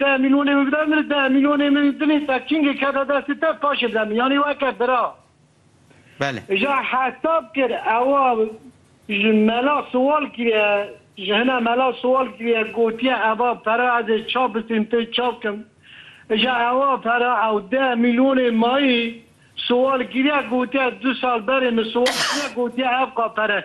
Deh mîlyonê min bide min, deh mîlyonê min dilê te kingê kete destê te paşê bide min. Yanî weke bira. Belê. Ja hesab kir ewa ji mela siwal kiriye, ji hina mela siwal kiriye gotiye eva pere ez ê ça bisîm pê ça bikim. Ja ewa pere ew deh mîlyonê mayî siwal kiriye gotiye du sal berê min siwal kiriye gotiye ev ka pere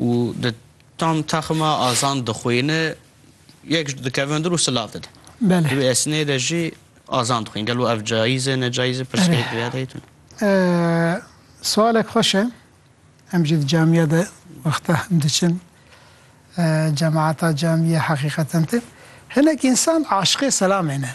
Û di tam texma azan dixwîne yek ji dikevin dir û silav dide. Di wê esnê de jî azan dixwîne. Gelo ev cayîz e necayîz e pirsgirêk divêya dayê tune. Siwalek xweş e. Em jî di camîya de wexta hem diçin cemaata camîya heqîqeten tê. Hinek însan aşiqê selamê ne.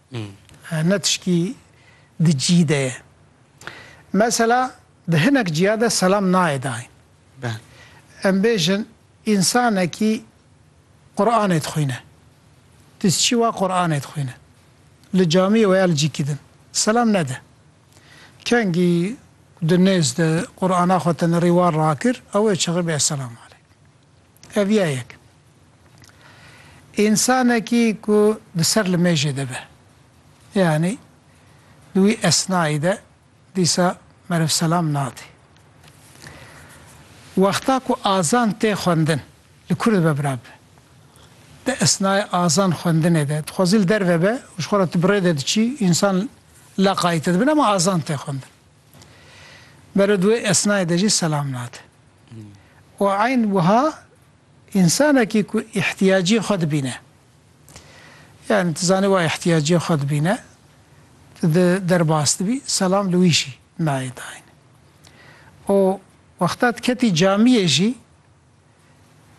Hene tiştî di cî de ye. Mesela di hinek ciya de selam nayê dayîn. Em bêjin însanekî Quranê dixwîne. Dis çî wa Quranê dixwîne. Li camiyê weya li cîkî din. Selam nede. Kengî di nêz de Qurana xwe tenerî wan rakir, ew ê çixibê Esselam aleykum. Ev ya yek. Însanekî ku di ser li mêjê de be, yanî di wî esnayî de dîsa merivselam nade. Wexta ku azan tê xwendin, li ku dibe bira bibe. Di esnayê azan xwendinê de, dixwazî li derve be û ji xwe re tu bi rê de diçî, însan leqayî te dibin, ema azan tê xwendin. Bero di wê esnayê de jî selam nade û eyn wiha însanekî ku îhtiyaciyê xwe dibîne yanî tu zanî wa îhtiyaciyê xwe dibîne tu di derbas dibî selam li wî jî nayê dayîn û wexta tu ketî camiyê jî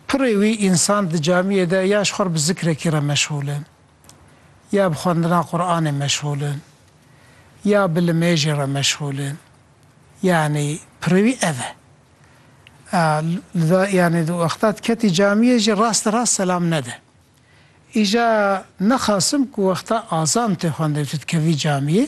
Pirê wî însan di camiyê de ya ji xwe re bi zikrekî re meşgûl in, ya bi xwendina Quranê meşgûl in, ya bi limêjê re meşgûl in. Yanî pirê wî ev e. Li da yanî di wexta diketî camiyê jî rast li rast selam nede. Îja nexasim ku wexta azan tê xwendin tu dikevî camiyê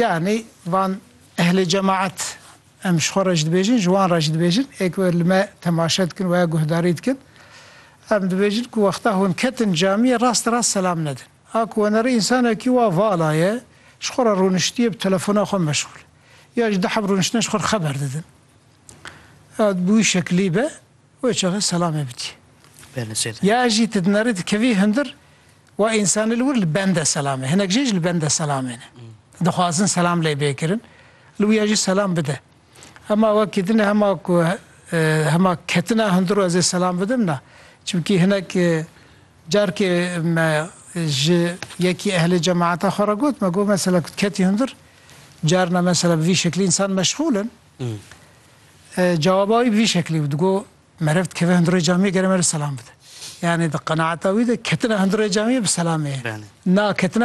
Yanî van ehlê cemaet em ji xwe re jî dibêjin, ji wan re jî dibêjin ê ku li me temaşe dikin weya guhdarî dikin em dibêjin ku wexta hûn ketin camiyê rast rast selam nedin. A ku wenerê însanekî wa vala ye ji xwe re rûniştiye bi telefona xwe meşgûl e ya ji diheb rûniştine ji xwe re xeber didin ya bi wî şekilî be wê çaxê selamê bidî ya jî tu dinerî dikevî hundir Wa însanê li wir li bende selam e. Hinek jê jî li bende selamê ne. Dixwazin selam lê bê kirin. Li wiya jî selam bide. Hema wekî din e hema ku hema ketina hundir û ez ê selam bidim na. Çimkî hinek carkê me ji yekî ehlê cemaeta xwe re got me got mesela ku tu ketî hundir carna mesela bi vî şeklî însan meşxûl in. Cawaba wî bi vî şeklî bû. Digot Meriv dikeve hundirê camiyê gere meriv selam bide. Yanî di qenaeta wî de ketina hundirê camiyê bi selamê ye. Na ketina